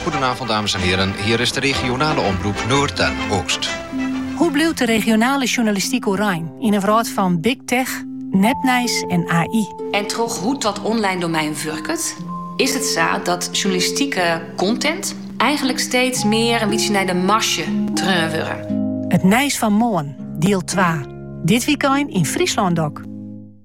Goedenavond dames en heren, hier is de regionale omroep Noord en Oost. Hoe bliuwt de regionale sjoernalistyk oerein yn in wrâld fan big tech, nepnijs en AI? En troch hoe't dat online domein wurket, is it sa dat sjoernalistike content eigenlik steeds mear in bytsje nei de marzje treaun wurde. It nijs fan moarn, diel twa, dit wykein yn Fryslân DOK.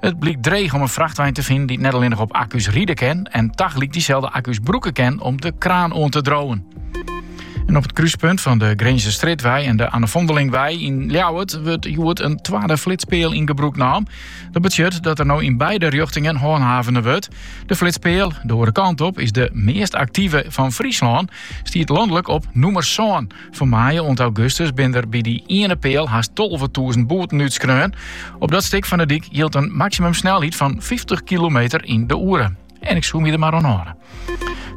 It blykt dreech om in frachtwein te finen dy't net allinnich op akku's ride kin en tagelyk dyselde akku's brûke kin om de kraan oan te driuwen. En op it kruspunt fan de Grinzer Strjitwei en de Anne Vondelingwei yn Ljouwert wurdt hjoed in twadde flitspeal yn gebrûk naam. Dat betsjut dat der no yn beide rjochtingen hanthavene wurdt. De flitspeal, de oare kant op, is de meast aktive fan Fryslân, stiet lanlik op nûmer sân. Fan maaie oant augustus binne der by dy iene peal hast tolvetûzen boeten útskreaun. Op dat stik fan de dyk jildt in maksimumsnelheid fan fyftich kilometer yn de oere. En ik soe my der mar oan hâlde.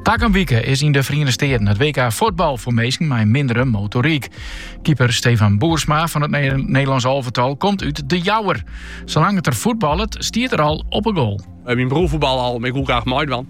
Takom wike is yn de Feriene Steaten it WK fuotbal foar minsken mei in mindere motoryk. Keeper Stefan Boersma fan it Nederlânsk alvetal komt út De Jouwer. Salang't er fuotballet, stiet er al op 'e goal. Myn broer fuotballe al, mar ik woe graach meidwaan.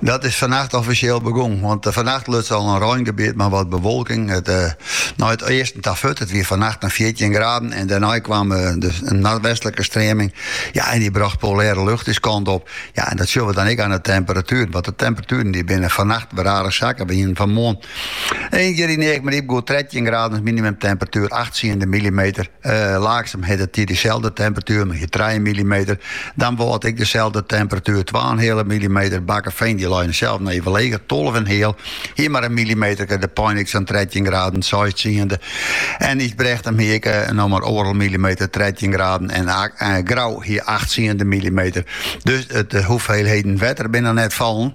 Dat is fannacht offisjeel begûn, want fannacht luts al in reingebiet mei wat bewolking nei it easten ta furt. It wie fannacht in fjirtjin graden en dêrnei kaam der in noardwestlike streaming. Ja, en dy brocht polêre lucht ús kant op. Ja, en dat sjoch we dan ek aan de temperatueren, want de temperatueren dy binne fannacht wer aardich sakke. We hienen fanmoarn ien kear yn Eagmaryp goed trettjin graden as minimumtemperatuer, acht tsiende millimeter. Laaksum dat hie deselde temperatuer, mar hie trije millimeter. Damwâld ek deselde temperatuer, twa en heale millimeter. Bakkefean dy lei sels noch even leger, tolve en heal. Hie mar in millimeterke, De Pein ek sa'n trettjin graden, seis tsiende. En Ysbrechtum hie ek noch mar oardel millimeter, trettjin graden. En Grou hie acht tsiende millimeter. Dus de hoeveelheden wetter binne net fallen.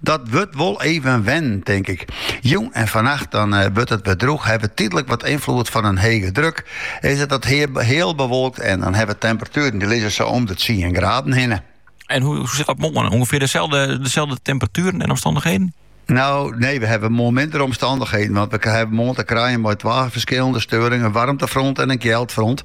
Dat wurdt wol even wennen, tink ik. Jûn en fannacht dan eh, wurdt it wer drûch, hawwe we tydlik wat ynfloed fan in hege druk. Is it dat heal bewolkt en dan hawwe we temperatueren dy lizze sa om de 10 graden hinne. En hoe sit dat moarn? Ongefear deselde, deselde temperatueren en omstandichheden? Nou, nee, we hawwe moarn minder omstandichheden. Want we hawwe moarn te krijen mei twa ferskillende steuringen. In waarmtefront en in kjeldfront.